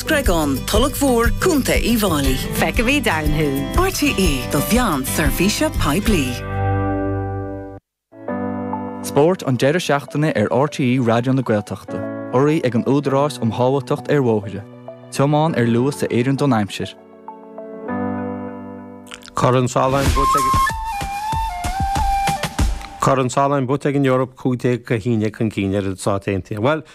Screagán, Tulach Mhór, Co. Uíbh Fháilí. Feicfimid ann thú! RTÉ, do Mheán Seirbhíse Poiblí. Spórt an deireadh seachtaine ar RTÉ Raidió na Gaeltachta. Urraithe ag an Údarás um Shábháilteacht ar Bhóithre. Tiomáin ar luas a oireann don aimsir. Corn Solheim buaite ag. Corn Solheim buaite ag an Eoraip 15 go haon déag chun cinn ar na Stáit Aontaithe. Bhuel,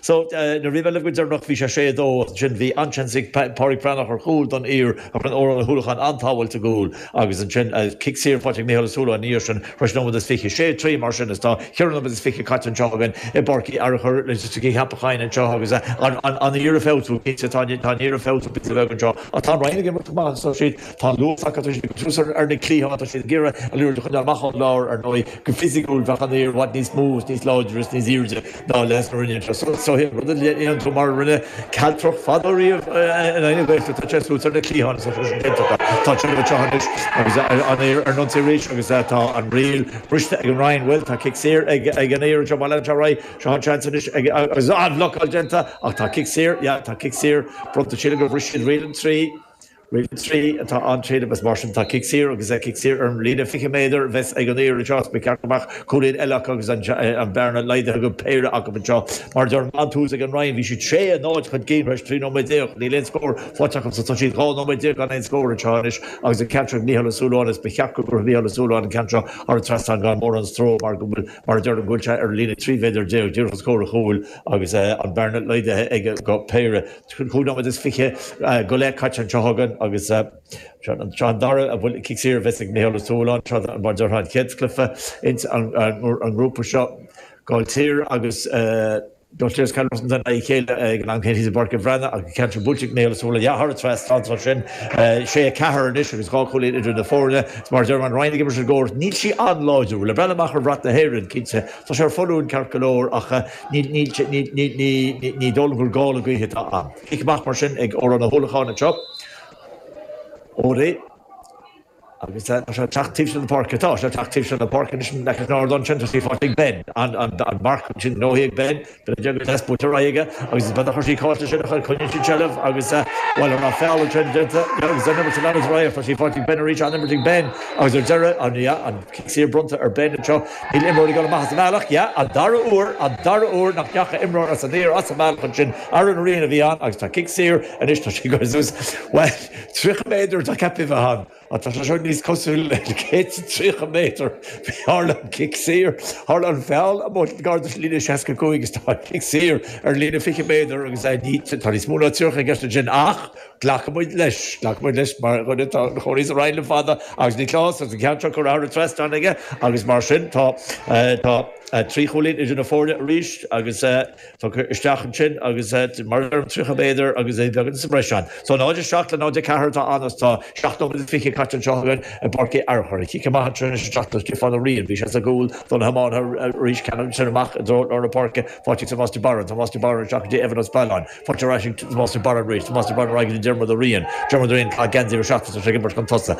So, na riamh eile go deireanach bhí sé sé a dó agus ansin bhí an-seans ag Pádraig Breathnach ar chúl don Uidhir ach rinne Odhrán Ó hUallacháin an-sábháil i gcúl agus ansin cic saor faighte ag Micheál Ó Súilleabháin ina dhiaidh sin tar eis nóiméad is fiche. Sé trí mar sin is tá ceithre nóiméad is fiche caite anseo againn i bPáirc Uí Fhearchair leis an gceapacháín anseo agus an Uidhir ag feabhsú. Cinnte tá an Uidhir ag feabhsú píosa beag anseo ach tá an Rinn ag imirt go maith agus tá siad, tá an luas acu, tá siad ag cur súil ar na cliatháin, tá siad ag iarraidh an liathróid a choinneáil amach ón lár. Ar ndóigh go fisiciúil bheadh an Uidhir i bhfad níos mó is níos láidre is níos aoirde. Ná leads na Rinne seo sa chéad rud a dhéanann tú, mar a rinne Caltrach fadó riamh in aghaidh na Gaeltachta, tá sé suas ar na cliatháin is atá sé déanta. Tá Churchill anseo anois agus an Uidhir ar an ionsaí arís agus tá an riail briste ag an Rinn. Bhuel, tá cic saor ag an Uidhir anseo, má leanann sé ar aghaidh, seo an seans anois ag, agus an-bhlocáil déanta ach tá cic saor, yeah, tá cic saor bronnta sílim gur bhris siad riail an trí. Riail an 3 atá ann agus mar sin tá cic saor agus cic saor ar an líne 20 méadar a bheas ag an Uidhir anseo. Is ba cheart go mbeadh cúilín eile acu agus an bhearna laghdaithe acu, péire acu anseo. Mar a dúirt mé an tús ag an Rinn, bhí siad sé náid chun cinn tar éis 13 nóiméad. Níl aon scór faighte acu so tá siad 12 nóiméad gan aon scór anseo anois agus an ceann seo ag Micheál Ó Súilleabháin is ba cheart go gcuirfeadh Micheál Ó Súilleabháin an ceann seo thar an trasnán gan mórán stró mar go bhfuil, mar a dúirt, go bhfuil sé ar an líne 13 mhéadar díreach os comhair an chúil agus an bhearna laghdaithe aige go péire. Cúig nóiméad is fiche go leith caite anseo againn agus seo an dara cic saor a bheas ag Micheál Ó Súilleabháin, tráth mar a dúirt mé an chéad chluiche ins an ngrúpa seo. Gaill Tíre agus Gaill Tíre agus Baile Róisín atá in aghaidh a chéile ag an am céanna thíos i bPáirc an Bhreathnaigh ach an ceann seo buailte ag Micheál Ó Súilleabháin. Dhá thoradh tráth an tráth sin, sé, a ceathair anois agus dhá chúilín idir na foirne. Is mar a deir tá an Rinn ag imirt le cóir, níl sí an-láidir. Bhuel ag breathnú amach ar bhrat na hÉireann, cinnte. Tá sé ar foluain ceart go leor ach ní dóigh liom gur gála gaoithe atá ann. Cic amach mar sin ag Odhrán Ó hUallacháin anseo. O'Reilly, Agus tá sé ag teacht taobh seo na páirce. Tá sé ag teacht taobh seo na páirce anois an liathróid in airde ansin. Tá sí faighte ag Ben. An marc ansin gnóthaithe ag Ben. Beidh deis agat buaite ar aghaidh aige agus is beag a chuirfidh cáill sa tsinsear. Coinníonn siad seilbh agus, bhuel, ar feadh an tráth déanta agus den imirt a leanas ar aghaidh. Thosaigh Pháirtín Ben arís, an-imirt ag Ben agus ar deireadh, an ea, an cic saor bronnta ar Ben anseo. Níl imreoir ag dul amach as a bhealach. Yeah, an dara huair, an dara huair nach ndeachaigh imreoir as amach as a bhealach ansin. Aaron Ryan a bhí ann agus tá cic saor anois, tá sé, Jesus, bhuel, 30 méadar atá ceaptha a bheith ann. Tá sé seo níos cosúla le cic 30 méadar. Tharla an cic saor, tharla an feall amuigh gar don líne 65 agus tá an cic saor ar líne 20 méadar agus tá níos mó ná 30 i gceist ansin ach glacfaidh muid leis, glacfaidh muid leis mar dhuine atá ina chónaí sa Rinn le fada agus Nioclás agus an ceann seo curtha thar an trasnán aige agus mar sin tá trí chúilín idir na foirne arís agus tugtha isteach ansin agus mar a deirim, 30 méadar agus é beagán sa mbreis ann. So 0, 7 le 0, 4 atá ann agus tá 17 nóiméad caite anseo againn i bPáirc Uí Fhearchair. Cic amach ansin anois isteach do Stiofán Ó Riain. Bhí sé sa gcúl do na hiománaithe arís cheana agus sin amach i dtreo lár na páirce, faighte ag Tomás de Barra. Tomás de Barra isteach go dtí Evan Ó Spealáin. Faighte ar ais ag Tomás de Barra arís. Tomás de Barra ar aghaidh go dtí Diarmuid Ó Riain. Diarmuid Ó Riain, ag caitheamh geansaí uimhir a seacht, is é seo ag imirt chun tosaigh.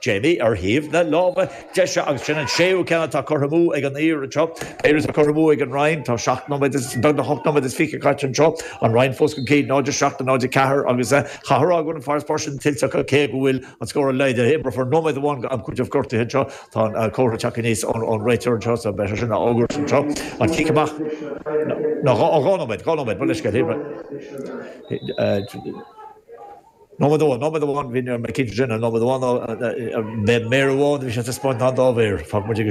Jamie, ar thaobh na láimhe deise, agus sin an séú ceann atá curtha amú ag an Uidhir anseo. Ceathair atá curtha amú ag an Rinn. Tá seacht nóiméad is, beag nach ocht nóiméad is fiche caite anseo. An Rinn fós chun cinn, 0-7 le 0-4, agus chaithfeá a rá go bhfuil an farasbarr sin tuillte acu, cé go bhfuil an scór laghdaithe. Imreofar nóiméad amháin d'am cúitimh gortuithe anseo. Tá an comhartha ag teacht aníos ón réiteoir anseo, so beidh sé sin á fhógairt anseo. An cic amach, no, dhá nóiméad, dhá nóiméad, mo leithscéal. Nóiméad amháin, nóiméad amháin, bhí, ní raibh mé cinnte de, nóiméad amháin, ab é méar amháin a bhí sé ag taispeáint nó an dá mhéar, fágfaidh muid ag.